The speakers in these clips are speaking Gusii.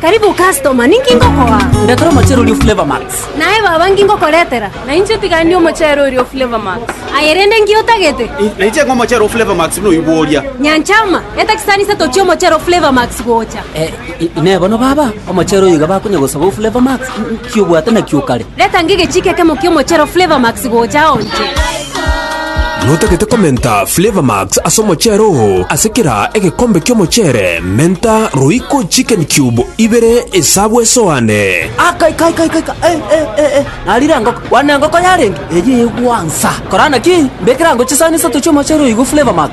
Karibu customer, ninki ngokoa? Ndetera omochere oria o Flavour Max. Naye baba, nki ngokoretera? Nainche tigani omochere oria o Flavour Max. Aye rende nki otagete? Nainche ng'a omochere o Flavour Max buna oibwo oria. Nyanchama, eta chisanisie tochie omochere o Flavour Max gocha. Eh, i- inee bono baba, omochere oyo iga bakonya gosaba o Flavour Max? Ki obwate nakio o kare? Reta ng'e egechiiko ekemo ki'omochero Flavour Max gocha ao inche. Notagete komenta Flavour Max ase omochero oo, ase kera egekombe ki'omochere menta Royco Chicken Cube ibere esabu esoane. Aka ika ika ika ika eh eh eh eh narire engoko bwana engoko yarenge eyio egwansa korana ki mbekere ango chisani isato chi'omochero oyo igwe Flavour Max.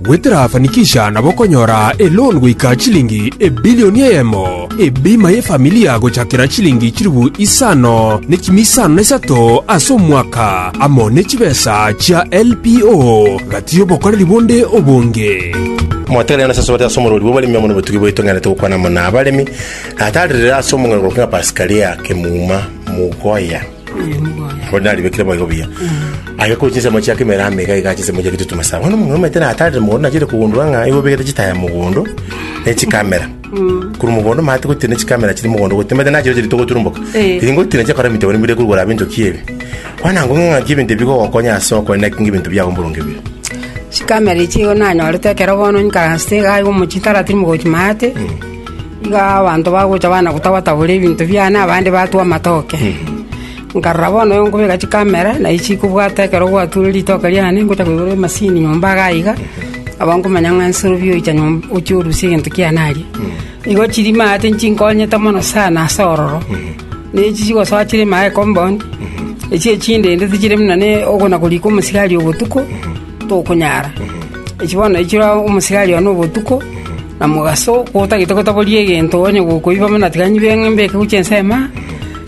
Gweterafanikisha nabo okonyora eloan goika chilingi ebilioni eyemo, ebima y'efamilia gochakera chilingi chilifu isano ne chimi isano na isato ase omwaka, amo ne chibesa chia LPO gati y'obokoreri bonde obonge. Motenene ase asubati ase omorwori bw'oboremi amo nobotugi bwaito ng'erete gokwana amo na abaremi, na taririre ase omong'aini korokwa ng'a Pasikalia, Kemuma, Mugoya. Bono naribekire moigo buya. Agekora chinsemo chia kemera amo iga iga chinsemo chia gitutu masaaba. Bono omong'ina omanyete na atarire mogondo nachire kogundora ng'a igo obegete chitaya mogondo ne chikamera. Korwa mogondo omanyete gotiira ne chikamera chiri mogondo gotiira omanyete nachireo chiri togoturumboka. Eh. Tiri ngotiira chiakora ebinto ebio mbire korwa igoro abe enchoki ebe. Bono nabo ng'a ng'aki ebinto ebi bigogokonya ase okore naki ng'a ebinto biago mboronge bire. Chikamera echi igo nanyorete ekero bono nkaransete iga iga omochie taratiri mogochi maate. Igo abanto bagocha banagotaba-tabora ebinto biane, abande batwe amatoke. Nkarora bono oyo nkobeka chikamera, na echi kobwate ekero gwature ritoke riane, ngocha koigora emasini nyomba iga aiga, abwo nkomanya ng'a inse orobio oicha nyomba ochia orusia egento kiane aria. Igo chirima ate nchinkonyete mono sana ase ororo, na echi chigosoa chire ime aye compound, echi echinde inde tichire buna ne oko na korika omosigari obotuko, tokonyara. Echi bono echi omosigario one obotuko. Na mogaso otagete gotaboria egento onye gokoiba buna tiga nyibe ng'a mbeke gochia ensemo,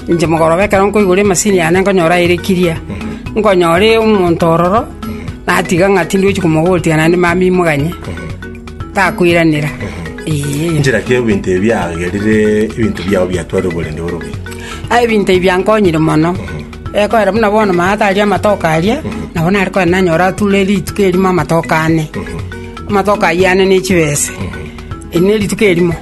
inche mogoroba ekero nkoigora emasini yane nkonyora aye ere clear. Nkonyore omonto ororo, natiga ng'a tindochi komobori tiga naende mambia imoganye, takoiranera. Eeh. Inchera ki ebinto ebi biagerire ebinto biao biatware oborende bore obuya? Aye ebinto ebi biankonyire mono. Ekoera buna bono maata aria amatoke aria, nabo nare koenda nanyore ature rituko erimo amatoke ane. Amatoke ayio ane ne chibese, eri nerituko erimo,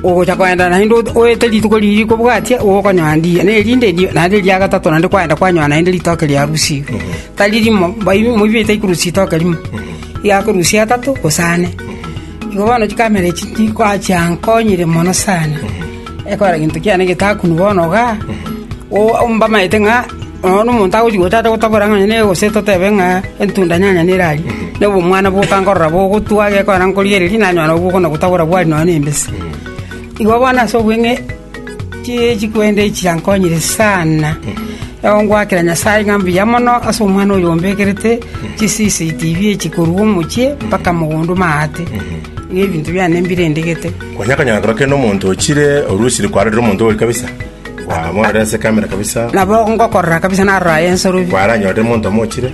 ogocha koenda naende oete rituko riria rikobwatia igo okonyoa ndiiya, na erinde erio naende eria gatato naende kwaenda kwanyoa naende ritoke riarusigwe, tari rimo, mbaibimo moibi baite korusia ritoke rimo, iga akorusia atato gose ane. Igo bono chikamera echi nkoachiaa nkonyire mono sana. Ekora gento kiane getakunwa bono iga, o- mbamaete ng'a nonya nomonto agochia gochacha gotabora ng'a neye gose totebe ng'a entunda nyanya nere aria, na obomwana bokankorora bogotwa gekogera na nkorigereria nanyora nabwo bokona gotabora bwari nonya na embese. Igo bono ase obweng'e chi- chikwenda echi chiankonyire sana, egongoakera Nyasae ng'a mbuya mono ase omwana oyo ombekerete chiCCTV echi korwa omochie mpaka mogondo maate, ng'a ebinto biane mbirendegete. Konya akanyora kero kende omonto ochire orwesire kwarorire omonto oboke kabisa, kwamororera ase ekamera kabisa, Nabo ngokorora kabisa narora aye nsorori. kwaranyorire omonto omo ochire,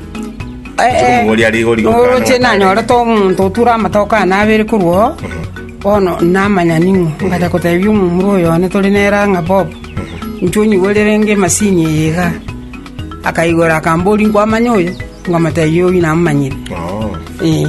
Chikomogori ari igori gokana Oroche ng'a kare. nanyorete omonto oture amatoke ane abere korwa oo, bono namanya ning'o. Ngacha kotebia omomura oyo one tore nere ang'a Bob, inche onyigorere renge emasini eye iga. Akaigora akambori nkwamanya oyo, nkamotebia oyio namomanyire. Oo. Eh.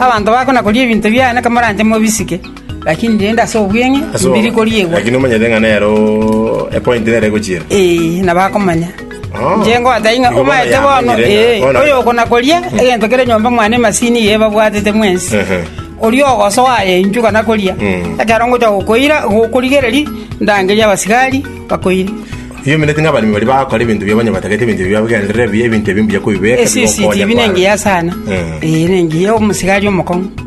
Abanto bakonakoria ebinto biane komoranche mobisike, lakini rende ase obweng'e mbiri koriegwa. Lakini omanyete ng'a nero epointi nere egochiera. Ee, na bakomanya. Oh. Inche ngobatebia ng'a Igo bono omanyete bono, yamanyire ng'a- ee, bono- oyokonakoria egento kere nyomba mwane emasini eye ebabwatete mwensi. Ehe. Oria ogosoa aye inchuka nakoria, Mm. ekero ngocha gokoira, gokorigereria, ndangerie abasigari bakoire. Ebiaomineti ng'a abaremi baria bagakora ebinto biabo onye batagete ebinto ebi biabagenderera ebibe, ebinto ebi mbuya kobibeeka, bigokonya CCTV nengiya sana. Eh. Eh, nengiya omosigari omokong'u.